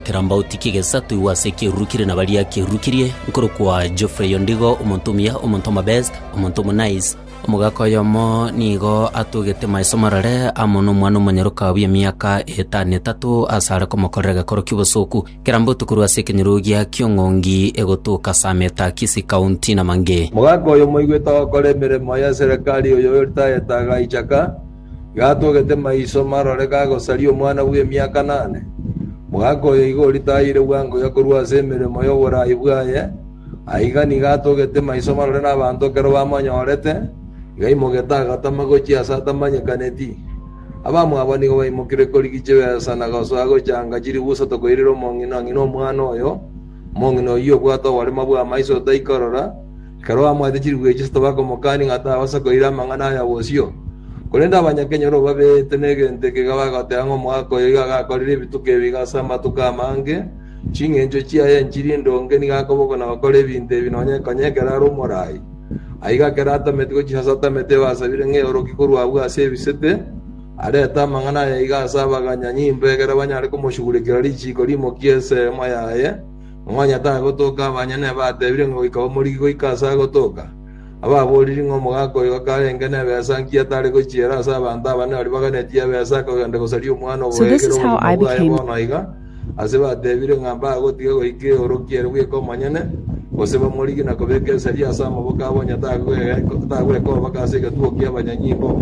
Kerambauti kegesa toigwe ase ekeruru kire na baria kerurukirie, nkorokwa Geoffrey Ondigo, omonto omuya, omonto omobest, omonto omonaice. Omogaka oyomo nigo atugete maiso marore amo nomwana omonyoroka bw'emiaka etano etato asare komokorera egekoro ki'obosoku. Kerambauti korwa ase ekenyorugia ki'ong'ongi egotoka Sameta, Kisii County, Namange. Mogaka oyo moigwete ogokora emeremo y'eserekari oyo oritayete agaichaka. gatogete maiso marore gagosaria omwana bw'emiaka nane. Mwaka oyo igo oritayire bwango Yoa korwa ase emeremo y'oboraai bwaye, aiga nigo atogete maiso marore nabanto ekero bamonyorete, igaimogete agatama gochia aase atamanyekaneti. Abamwabo nigo baimokire korigia chibesa na gosoa gochanga chiribusa tokoirera omong'ina ng'ina omwana oyo, omong'ina oyio obwate oborema bw'amaiso otaikorora, Ekero bamwate chirwuga chisato bakamokania ng'a tabasa koira amang'ana aya bosio. Korende abanyakenya barabwo babeete negento eke iga bagoteba ng'a omogaka oyo iga agakorire ebituko ebi iga ase amatuko amange, chingencho chiaye nchiri ndonge nigo akobokwa na gokora ebinto ebi nonya konya ekero are omorai. Aiga ekero atameti gochia ase atamete ebasabire ng'a eoroki korwa abwo ase ebisete, arete amang'ana aya iga ase abaganya nyimbo ekero banyare komosugurekera richiiko rimokie ensemo yaye, Onye tagotoka abanyene batebire ng'a goika bamorigi goika aase agotoka, ababooriri ng'a omogaka oyo akarenge nebesa nkia tare gochiera ase abanto abane baria baganetie ebesa akagenda gosaria omwana oboegere obogima bwaye bono aiga, aase batebire ng'a mbagotiga goika eorokia ere bweka omonyene, gose bamorigi na kobeka esegi ase amaboko abo onye tagweka obaka ase egetugo kia abanyanyimbo.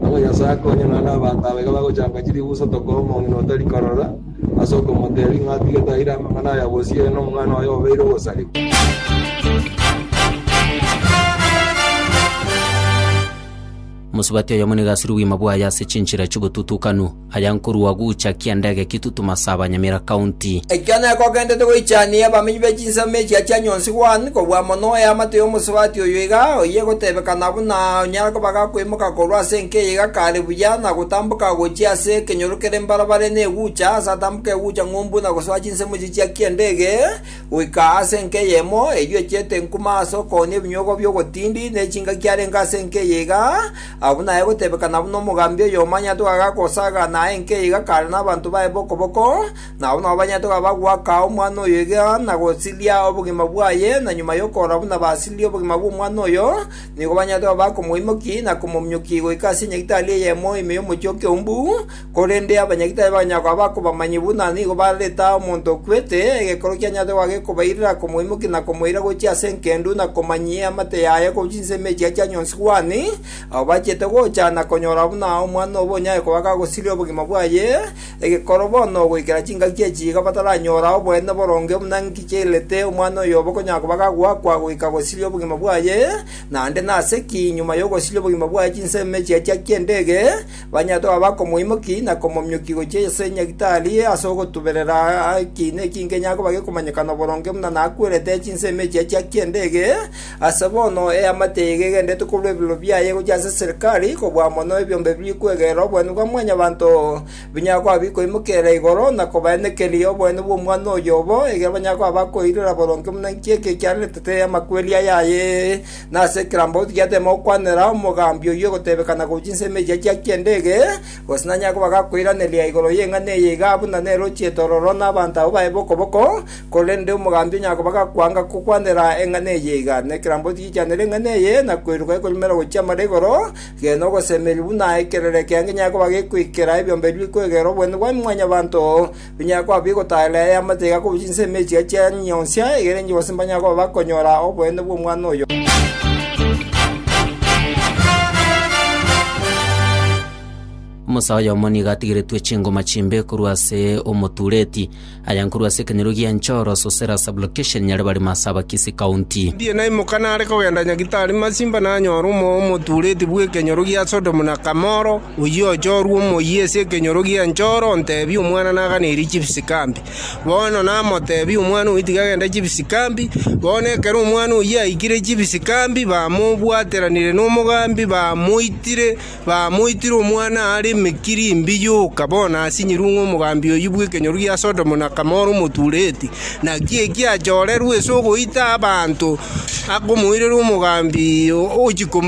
Nabo Nyasae akonye nonye nabanto aba iga bagochanka chilifu isatoka omong'ina otari korora, Ase okomoteebia ng'a atige taira amang'ana aya gose ere nomwana oye obeire ogosarigwa. Mosubati oyomo nigo asire obogima bwaye ase chinchera chi'obotutukanu, aya nkorua gocha kiandege Kitutum ase abanyamera County. Ekio nekogendete goichania abamenyi be chinsemo echia chia Nyonsi One kobua mono eamate y'omosubati oyo iga, oyo egotebekana buna onyare koba gakoimoka korwa ase enka eye gakare buya na Gotamboka agochia ase ekenyoro kere mbarabare negucha, aase atamboka egucha ng'umbu na gosoa chinsemo chichia ki'endege, goika aase enka eyemo, eyio echete nkuma aase okooni ebinyogo bi'ogotindi, ne chingaki arenge aase enka eye iga, abwo naye gotebekana buna omogambi oyomo anyate ogaga gosagana aye enka eye iga kare nabanto baye b'okoboko, na abwo nabo banyate ogaga goaka omwana oyo iga na gosiria obogima bwaye, na nyuma y'okoora buna basirie obogima bw'omwana oyo, Nigo banyarete koba bakomoimokia na komominyokia goika ase enyagitari eyemo ime y'omochie o Keumbu, korende abanyagitari bakanyara koba bakobamanyi buna nigo bareta omonto okwete, egekero kianyarete goba gekobairera komoimokia na komoira gochia ase engendu na komanyia eamate yaye korwa chinsemo echia chia nyonsi Kuhani, abo bachiete gocha na konyora buna omwana obo onyare koba gagosiria obogima bwaye, Egekoro bono ogoikera chingaki echi iga bataranyora oboene boronge buna nki chiairerete omwana oyomo konya koba gagoakwa goika gosiria obogima bwaye, naende nase ki nyuma y'ogosiria obogima bwaye chinsemo echi achiakia endege, banyarete koba bakomoimoki na komomiokia gochia ase nyagitari ase ogotuberera ekiina eki nkenyare koba gekomanyekana boronge buna nakwerete chinsemo echi achiakia endege, Ase bono eamate eye egegenderete korwa ebirorio biaye gochia ase Serikali, kobua mono ebiombe biri kwegera oboene bwa Mwanyabaanto, binyare koba bikoimokerera igoro na kobaenekeri oboene bw'Omwana oyo obo, ekiagera banyare koba bakoirora boronge buna inki eke kiaretete amakweri aya aye. Na ase kera mbauti giateema gokwanera omogambi oyio ogotebeka na gochia nsemo eria chiakia endege, gose nanyare koba gakoiraneria igoro y'eng'ana eye igaa buna nerochie tororo na abanto abwo baye bokoboko, Korende omogambi onye akoba gakwanga gokwanera eng'ana eye iga, nekerambe otigichanere eng'ana eye, na koiruka ekoremera gochia amara igoro, gena ogosemeria buna ekerere kia ngenyai koba gekoikera ebiombe ebi bikwegera obonene bwa Mwanyabaanto, binyare koba bigotaaerera aya amache iga korwa chinsemo echi chia chianyi nyionsia, egere inche bonsi mbanyare koba bakonyora obonene bw'omwana oyo. Omosae oyomo nigo atigeretwe chingoma chimbe korwa ase omotureti. Aya nkorwa ase ekenyoro gia Nchoro, Sosera Sub-location, Nyaribari Marsabakisi County. Ndiye naimoka nare kogenda Nyagitari Masimba nanyora omoyo omotuureti bw'ekenyoro gia Sodomu na Kamoro, oyio ochorwe omoyia ase ekenyoro gia Nchoro, ontebia, Omwana naganeirie chibisikambi. Bono namotebia, Omwana oyio tiga agende chibisikambi. Bono ekero omwana oyio aikire chibisikambi, bamobwateranire nomogambi, bamoitire. Bamoitire omwana aare emekiri imbe yoka, bono asinyirwe ng'a omogambi oyio bw'ekenyoru gia Sodomu na Gomora omotureti. Naki eki achorerwe ase ogoita abanto akomoirera omogambi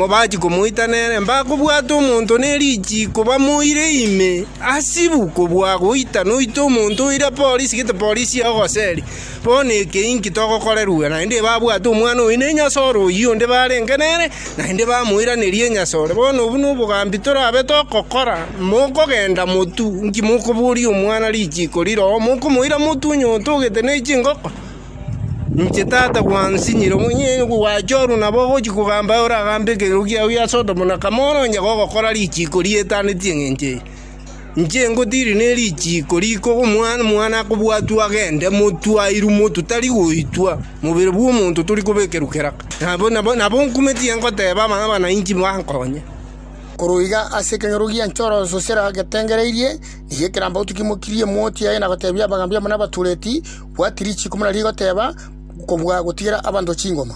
bachia komoita nere, mbakobwate omonto ne richiiko bamoire ime, hasibu kobua goita noite omonto oira polisi, gete polisi ya ogoseria. Bono eke inki togokorerwa? Naende babwate omwana oyo na enyasore oyio onde barenge nere, naende bamoiraneria enyasore. Bono obwo nobogambi torabe togokora, mokogenda motu, inki mokoboria omwana richiiko riroo, mokomoira motu onye otogete ne chingoko? Inche tata gwansinyire, onye gwachorwa nabo ogochia kogamba aye oragambe ekeiro kiago gia Sodomu na Gamora, onye gogokora richiiko rietaneti engencho eye. Inche ngotiiri ne richiiko riko omwana omwana akobwatwa agende motwe airwe motwe tari goitwa, mobere bw'omonto tori kobekerwa keraka. Nabo nabo nabo nkumetie ngoteeba abana abana inchi bankonye. Korwa iga ase ekenyoro gia nchoro sosera getengereirie, nigo ekerambe gotokimokirie emoti yaye na goteebia abagaambi amo nabatureti, Bwati richiiko muna rigoteeba, Kobua gotigera abanto chingoma.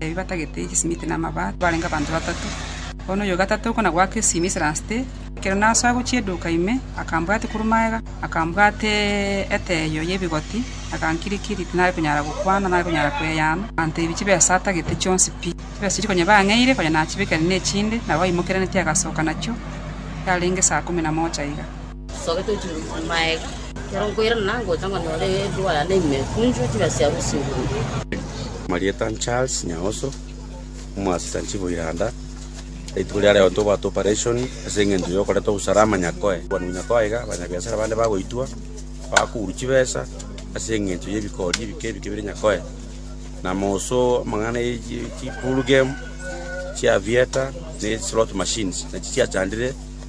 Ebi batagete egesimiti na amabaati barenge abanto batato. Bono oyo o gatato okwo na goaka esimi ase ransete, ekero nasoa gochia eduka ime, akambwatia korwa magega, akambwata eteeyo y'ebigoti, na agankiri-kiri, tinare konyara gokwana, nare konyara kweyana. Aganteebia chibesa atagete chionsi pi, chibesa chiria konya bang'eire, konya nachibekire nechinde, nabo baimokerenetie agasoka nachio yarenge saa ikomi na mocha iga. Nsogete gochia ime korwa magega, ekero nkoirana nangocha ng'a nyore edoa yane ime ekunchwe chibe chiabo chiguru. Amarieta a Charles Nyaoso, omoasasanchi bwa Iranda. Rituko riare riontwa obwate operation ase eng'encho yokoreta obusarama Nyakoe. Kwanigwa Nyakoe iga abanyabiasara bande bagoitwa bakogurwa chibesa ase eng'encho y'ebikori ebike ebike bire Nyakoe. Namoso amang'ana ye chi chi pool game, chiavieta, ne slot machines nachi chiachandire.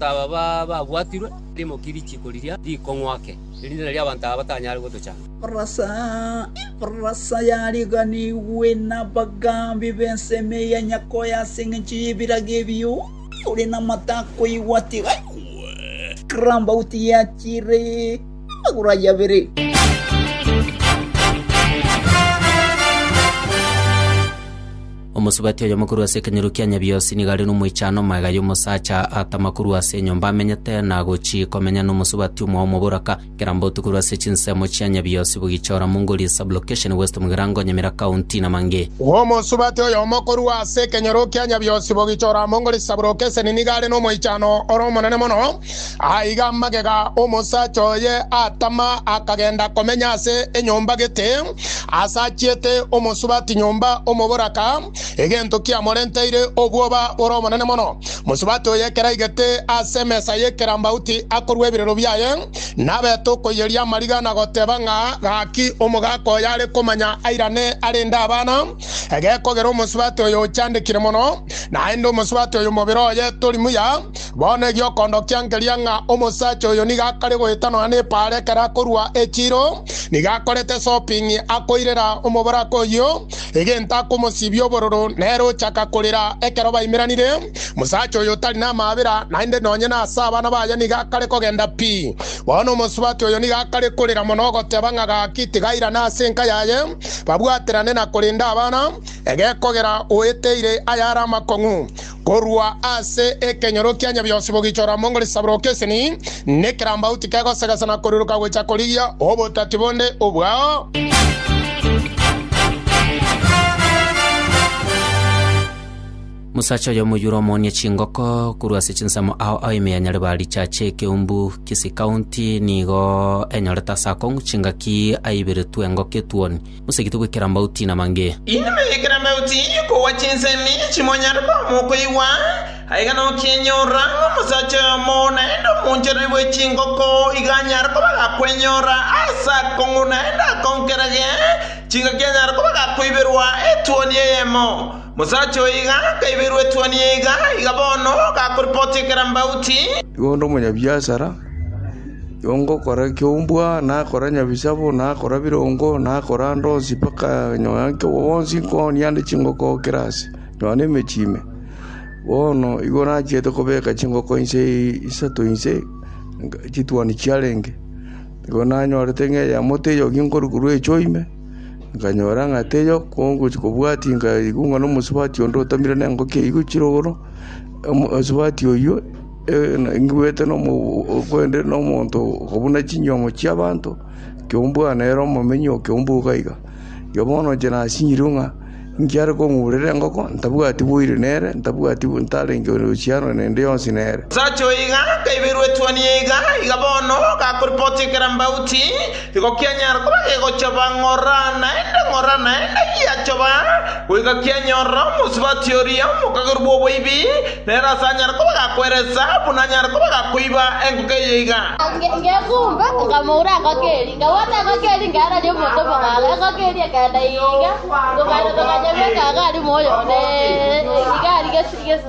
Aba babwatirwe rimoki risiiko riria rikong'wake, erinde nario abanto aba batanyare gotochanda. Ebarasa yariganigwe nabagambi b'ensemo eya Nyakoyo ase engencho y'ebirago ebio, oyore namato akoigwa tiga aigwe. Karambauti yachire amagoro aye abere. Omosubati oyomo korwa ase ekenyoro kia Nyabiosi nigo are nomoichano omwega y'omosacha atama korwa ase enyomba amenyete na gochii komenya nomosubati omwaomo boraka Kerambotu korwa ase chinsemo chia Nyabiosi Bugichora Mungori Sub-location West Mugirango Nyamira County na mang'e. Omosubati oyomo korwa ase ekenyoro kia Nyabiosi Bugichora Mungori Sub-location nigo are nomoichano ore omonene mono. Aiga magega omosacha oye atama, akagenda komenya ase enyomba gete, asachiete omosubati nyomba omoboraka, egento kiamorenteire obwoba bore obonene mono. Mosubati oye ekero aigete ase emesa y'ekerambauti akorua ebirero biaye, nabete okoiyeria amariga na goteba ng'a, Gaki omogaka oyo are komanya airane arende abana, egekogera omosubati oyo ochandekire mono, naende omosubati oyo mobere oye tori muya. Bono egiokondokia nkeria ng'a omosacha oyo nigo akare goeta nonya nepaara ekero akorua echiro, nigo akorete shopping, akoirera omoboraka oyio egento akomosibia obororo, nere ochaka korera ekero baimeranire. Omosacha oyo otari namabera, naende nonya nase abana baye nigo akare kogenda pi. Bono omosubati oyo nigo akare korera mono ogoteba ng'a gaki tigairane ase enka yaye, babwaterane na korenda abana, egekogera oeteire ayare amakong'u. Korwa ase ekenyoro kia Nyabionsi bogichora amo ngore chisaburoka eseni, nekerambauti kegosegesa na koriroka gocha korigia obotati bonde obwao. Mosacha oyomo oyure omoonie chingoko korwa ase chinsemo ao ao ime ya Nyaribari richache ekeumbu Kisii County nigo enyorete ase akong'u chingaki aiberetwe engoko etuoni Mosegetwe goikera amauti namange. Inwe moigekere amauti kogwa chinsemi chimonyare koba mokoigwa, aiga nokienyora ng'a omosacha oyomo naende omoonchereri bwe chingoko iga anyare koba gakwenyora aase akong'u naende akonkerege chingaki anyare koba gakoiberwa etuoni eyemo. Mosacha oyo iga akaiberwa etuoni eye iga, iga bono gakoripoti ekera mbauti. Igo onde omonyabiasara. Yongokora ekeombwa, nakora nyabisabo, nakora birongo, nakora ande onsi mpaka nyoya nke obo bonsi nkooni ande chingoko oo kera aase, nyoya nemechie ime. Bono igo nachiete kobeka chingoko inse isato inse chituoni chiarenge. Igo nanyorete ng'a eyemo teiyo ginkori korwa echio ime, nkanyora ng'a teiyo kongochi kobwati nkaigwa ng'a nomosubati onde otamire nengoki eywo chire igoro, omosubati oywo. Ingwete kwende nomonto okobuna chinyiomo chi'abanto, ekeombwa nere omomenyi okeombwa iga iga. Erio bono inche nasinyirwe ng'a nkiare kong'urera engoko, ntabwati boiri nere, ntabwati ntarenge ohusiano nende yonsi nere. Sacha oiga akaiberwa etuoni yaiga iga bono, gakoripoti ekerambauti. Igo kianyara koba gegochoba ng'ora naende, ng'ora naende giachoba, goika kianyorera omosubati oria omokageru bw'oboibi, nere ase anyare koba gakweresa, buna anyare koba gakoiba engoko eye iga. Ngekumba, nkamoura engoko eria, nkabwata engoko eria nkaereria omonto omogalo, engoko eria ekagenda iga, tokagenda tokanyebeka iga aria moyo one, iga aria gesi gesi.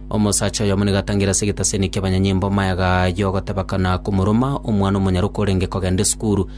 Omosacha oyomo nigo atangire ase egetaseni ki'abanyanyimbo amayaga ayio, ogoteba kana komoroma omwana omonyaroka orenge kogenda esukuru.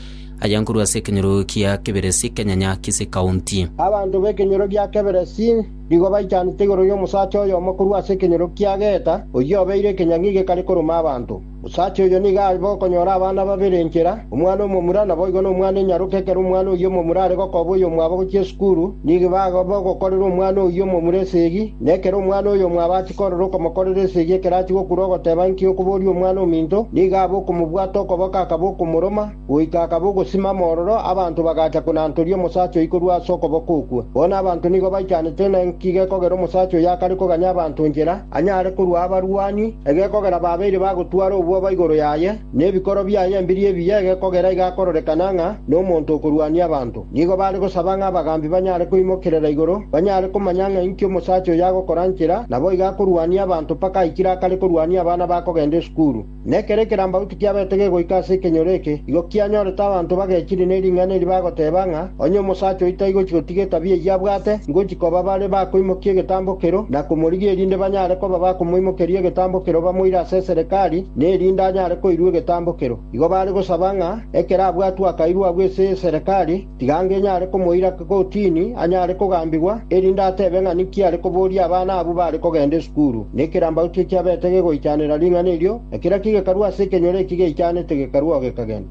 Aya nkorwa ase ekenyoro kia Keberesi, Kenyanya, Kisii County. Abanto b'ekenyoro gia Keberesi nigo baichanete igoro y'omosacha oyomo korwa ase ekenyoro kia Geita, oyio obeire ekenyang'i gekare koroma abanto. Osacha oyo nigo are bokonyora abana babere enchera, omwana omomura, naboigo nomwana enyaroke, ekero omwana oyio omomura are gokoba oyomwabo gochia esukuru, nigo ibaga bogokorera omwana oyio omomura esegi, na ekero omwana oyomwabo achia korora okomokorera esegi ekero achia gokura ogoteba, Inki okoboria omwana ominto? nigo abe okomobwata okoboko akaba okomoroma, Goika akaba ogosimama ororo, abanto bagacha konantoria omosacha oyio korwa ase okoboko okwo. Bono abanto nigo baichanete ng'a inki gekogera omosacha oyo akare koganya abanto inchera, anyare korua abarwani, egekogera babeire bagotwara obwoba igoro yaye, na ebikoro biaye ebiria ebiya egekogera igakororekana ng'a nomonto okorwania abanto. Nigo bare gosaba ng'a abagambi banyare koimokerera igoro, banyare komanya ng'a inki omosacha oyo agokora inchera, naboigo akorwania abanto mpaka aikire akare korwania abana bakogenda esukuru. Nekero ekerambauti kiabete gegoika ase ekenyoro eke, igo kianyorete abanto bagechire ne ring'ana eri bagoteba ng'a, Onye omosacha oito aigochi gotiga etabia eyio abwate, ngochi koba bare bakoimokia egetambo kero, na komorigia erinde banyare koba bakomoimokeria egetambo kero bamoire ase eserekari, na erinde anyare koirwa egetambo kero. Igo bare gosaba ng'a ekero abwatwe akairwa agwo ase eserekari, Tiga ngenyare komoira kotini anyare kogambigwa, erinde atebe ng'a ninki are koboria abana abwo bare kogenda esukuru, na ekerambaroto ekiabete gegoichanera ring'ana erio, na keraki gekarua ase ekenyoro eki geichanete gekarua oo gekagenda.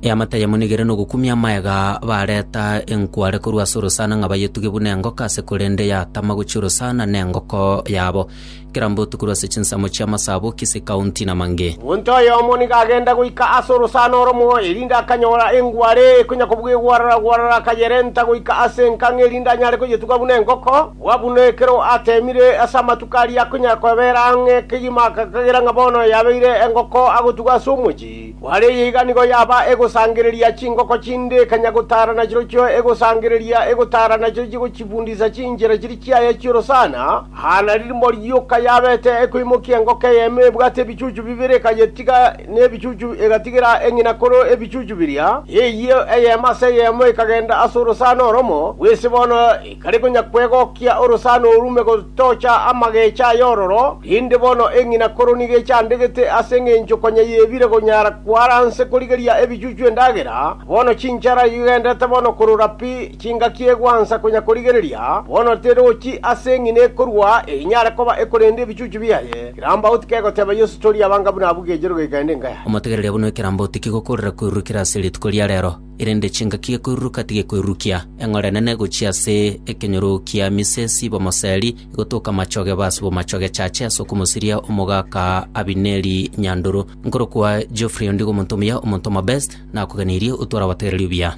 Eamate yamonigire nogokumia amaega, bareta enkware korwa ase orosana ng'a bayetuge buna engoka ase korende yatama gochia orosana nengoko yabo. Kera mbotuko ase chinsemo chi'amasabo kise kaunti na mange. Omonto oyomo nigo agenda goika ase orosana oromo, erinde akanyora engware ekonya kobua egwarara-gwarara, akayerenta goika ase enkang'u erinde anyare koyetuga buna engoko. Bua buna ekero ateemire ase amatuko aria akonyara koeberera ang'e kegima, akagera ng'a bono yabeire engoko agotuga ase omochie. Kware eye iga nigo yaba egosangereria chingoko chinde ekanya gotara nachirochio egosangereria egotara nachio chigochibundisa chinchera chiria chiaye chi'orosana, aa nari rimbori yoka yabete ekoimokia engoko eyemo ebwate ebichuchu bibere ekayetiga nebichuchu egatigera eng'ina koro ebichuchu biria, eyio eyemo ase eyemo ekagenda ase orosana oromo bw'ise bono, Kare konya kwegokia orosana orume gotocha amagecho ay'ororo, rinde bono eng'ina koro nigo echandegete ase engencho konya yebire konyara kwaranse korigeria ebichuchu endagera, bono chinchara igenderete bono korora pi, chingaki egwansa konya korigereria, bono terochi ase eng'ina ekorwa enyare koba ekorenda ebichuchu biaye. Kerambau tikegoteba Yeso tori abanga buna abwo gechire goika ende nkayaye. Omotegereria buna ekerambau tikigokoorera kwerurukera ase rituko ria rero. erende chingaki gekoiruruka tigekoirurukia eng'orenene gochia ase ekenyoro kia Misesi b'omoseri, egotoka amachoge base bw'amachoge chache ase okomosiria omogaka Abineri Nyandoro. Nkorokwa Geoffrey ondigo omonto omuya, omonto omobest, nakogeneirie otware abategereri obuya.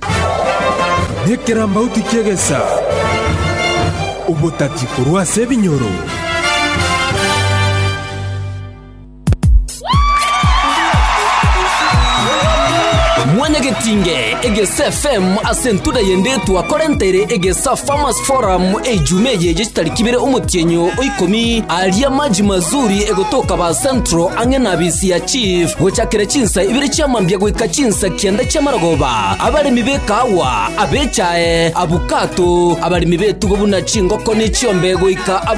Nekerambauti ki'egesa, obotati korwa ase ebinyoro. Mwanyagetinge egesa FM ase entuda y'endetwa korentere egesa Farmers Forum ejuma eye ye chitariki ibere omotienyo o ikomi aria maji mazuri egotoka ba Central ang'e na bisi ya Chief gochakera chinsa ibere chia mambia goika chinsa kianda chia maragoba abaremi b'ekahawa abechae abukato abaremi b'etugo buna chingoko ne chiombe goika ab-